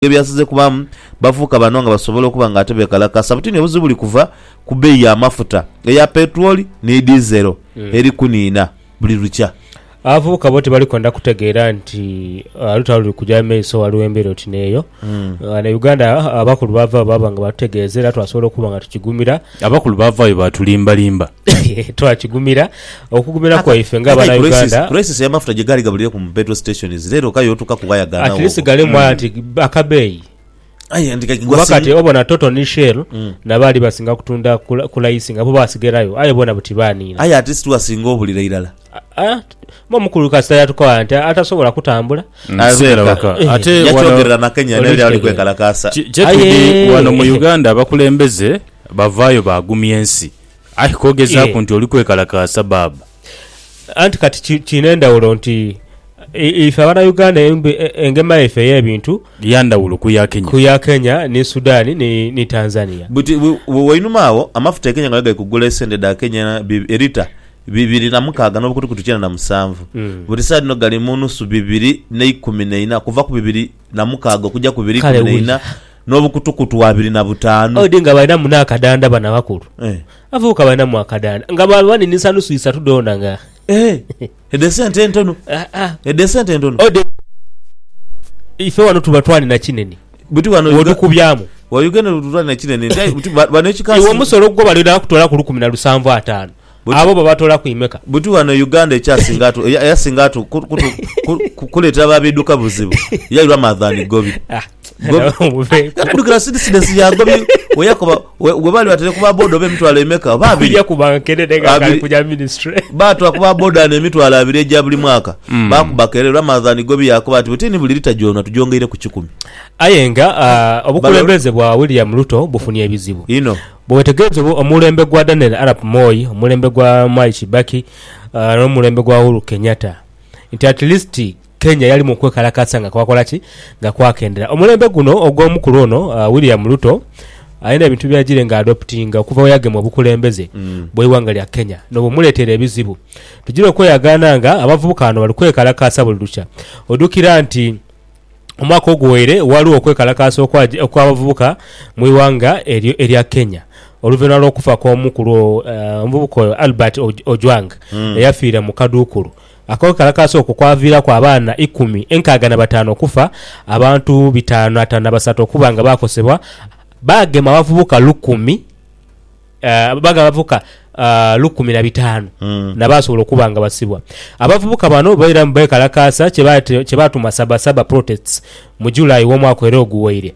Ebyo byasinze kubaamu bavubuka bano nga basobola okuba nga ate beekalakaasa buti ni obuzibu buli kuva ku beeyi y'amafuta eya peetulooli ni diizero eri kuniina buli lukya. Abavubuka bo tibalikwenda kutegeera nti olutalo luli kugya mu maiso ghaligho embeera oti n'eyo. Ghano e Uganda abakulu baavaayo baaba nga baatutegeeza era twasobola okuba nga tukigumira. Abakulu baavaayo baatulimbalimba. Twakigumira, okugumira kwaife nga Abanauganda. Crisis ya mafuta gyegaali gabulire ku mu petrol stations leero ka yotuka ku waya ganagho. At least galimu mm. anti akabeeyi kuba kati obona toto ni shell mm. nabaali basinga kutunda kulayisi nga bo basigerayo aye bona buti baniina aye ati situwasinga obulira irala omukulu kasita yatukola nti atasobola kutambula mm. eh. ate yakyogerera na kenya naye ali kwekalakaasa kyetudi wano mu uganda abakulembeze bavaayo bagumya ensi Aye kogezaaku nti oli kwekalakaasa baaba. Anti kati kiina endhawulo nti ife Abanauganda engema yaife ey'ebintu ya ndhawulo ku ya Kenya, ku ya Kenya ni Sudan ni Tanzania. Buti wainuma agho amafuta e Kenya nga gali kugula esente dha Kenya e lita bibiri na mukaaga n'obukutukutu kyenda na musanvu, buti saagha dhino gali mu nusu bibiri n'eikumi na ina, kuva ku bibiri na mukaaga okugya ku bibiri ikumi na ina. N'obukutukutu abiri na butaanu. Odi nga balinamu n'akadanda bano abakulu. Eh. Abavubuka balinamu akadanda nga bwaba baninisa nusu isatu dhoona nga. Eh. Edho esente entono. Ah, ah. Edho esente entono. Odi ife wano tuba twanina kinene Buti wano Uga- wotukubyamu. wa Uganda tuba twalina kinene nti aye buti ba- bano ekikaasi. Iwe omusolo gwo balina kutoolaku lukumi na lusanvu ataano. Buti- Abo babatoola ku imeka. Buti wano Uganda ekyasinga atu eya- eyasinga atu ku- kutu- ku- ku- kuleetera ba biduka buzibu yairwa Madhani Gobi. Ah, Gobi- nawe muveeku. Kati dukira sidisidesi ya Gobi weyakoba we- webaali batere ku ba boda oba emitwalo emeka oba abiri Kuja kuba nkenene nga Abiri. kali kuja ministry. baatwa ku ba boda n'emitwalo abiri egya buli mwaka Mm. baakubaka era Ramadhan Gobi yakoba nti bwetini buli lita gyona tugyongeire ku kikumi Aye nga ah, obukulembeze bwa William Ruto bufunye ebizibu. ino Bwe wetegereza obu omulembe gwa Daniel Arap Moi, omulembe gwa Mwai Kibaki n'omulembe gwa Uhuru Kenyatta nti at least Kenya yali mu kwekalakaasa nga kwakola ki? Nga kwakendera. Omulembe guno ogw'omukulu ono William Ruto alina ebintu by'agiire nga adoputinga okuva bwe yagema obukulembeze bw'eighanga lya Kenya n'obumuleetera ebizibu. Tugiire okweyagaana nga abavubuka bano bali kwekalakaasa buli lukya. Ojukira nti Omwaka oguwaire waliwo okwekalakaasa okwaj okw'abavubuka mu ighanga eryo erya Kenya oluvainhuma lw'okufa kw'omu ku lwo omuvubuka oyo Albert Oj Ojwang eyafiira mu kaduukulu. Akwekalakaasa okwo kwaviiraku abaana ikumi enkaaga na bataanu okufa, abantu bitaanu atano na basatu okuba nga baakosebwa, baagema abavubuka lukumi. Babaga abavubuka lukumi na bitaanu n'abaasobola okuba nga basibwa. Abavubuka bano bairamu beekalakaasa kye baatuma Saba Saba Protests mu July w'omwaka era oguwaire.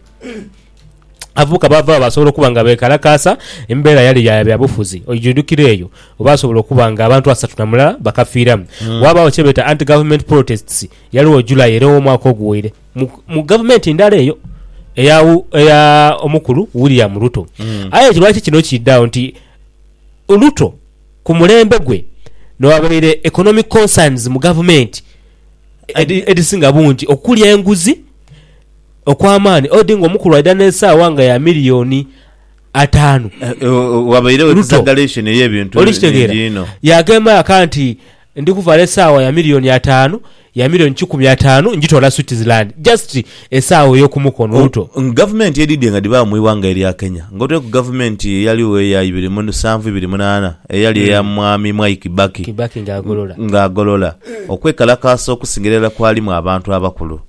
Abavubuka baava agho baasobola okuba nga beekalakaasa embeera yali ya byabufuzi oidhukira eyo baasobola okuba nga abantu asatu na mulala bakafiiramu. Waabagho kye beeta Anti-Government Protests yaligho July era ow'omwaka oguwaire. mu, mu gavumenti ndala eyo eya, eya omukulu William Ruto. Mm. Aye ekyo lwaki kino kiidhaagho nti Ruto ku mulembe gwe noghabaire economic concerns mu gavumenti edi- edisinga bungi okuli enguzi okw'amaani odi nga omukulu aidha n'esaawa nga ya miliyoni ataanu Eh, eh, Wabairewo Ruto. exaggeration ey'ebintu Oli kitegeera? bingi inho. Yaghemba aka nti Ndi kuvaala esaawa ya milioni ataanu, ya milioni kikumi ataanu njitoola Switzerland. Just esaawa ey'okumukono omuto. Ku gavumenti edhidhi nga dhibagho mu ighanga erya Kenya, ng'otaire ku gavumenti eyaligho eya ibiri mu nsanvu ibiri munaana eyali eya Mwami Mwai Kibaki, Kibaki nga agolola. nga agolola, okwekalakaasa okusingira irala kwalimu abantu abakulu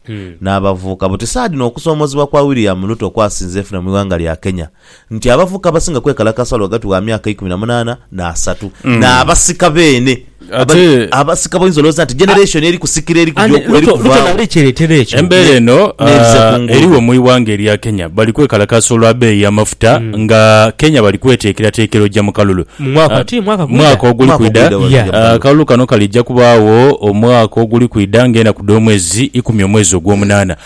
n'abavuuka. Buti saadhino okusoomozebwa kwa William Ruto kwasinze efuna mu ighanga lya Kenya. nti abavubuka abasinga kwekalakasa lwa ghati wa myaka ikumi na munaana n'asatu, n'abasika beene abali Ate- abasika b'oyinza olowooza nti generation eri kusikira eri kugya oku- eri Luto kuvaawo. nali kyeretera ekyo. Embeera eno n'ebize ah, kungulu. eriwo mu ighanga erya Kenya bali kwekalakaasa olwa beeyi y'amafuta nga Kenya bali kweteekerateekera ojja mu kalulu Hmm. Mu mwaka Ah, ki? Mwaka gwida? mwaka oguli Mwaka kwida ogwidha bali Yeah. kugya mu Ah, kalulu. akalulu kano kalijja kubaawo omwaka oguli kwida ng'enaku dh'omwezi ikumi omwezi ogw'omunaana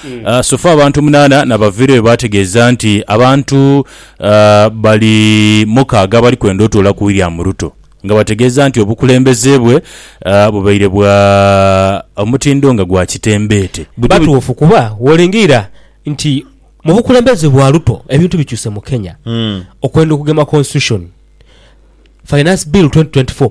Sofa abantu munaana n'abaviira be baategeeza nti abantu bali mukaaga abali kwenda otuula ku William Ruto nga bategeeza nti obukulembeze bwe bubaire bwa omutindo nga gwa kitembeete. Batuufu kuba woolengera nti mu bukulembeze bwa Ruto ebintu bikyuse mu Kenya okwenda okugema Constitution, Finance Bill twenty twenty four.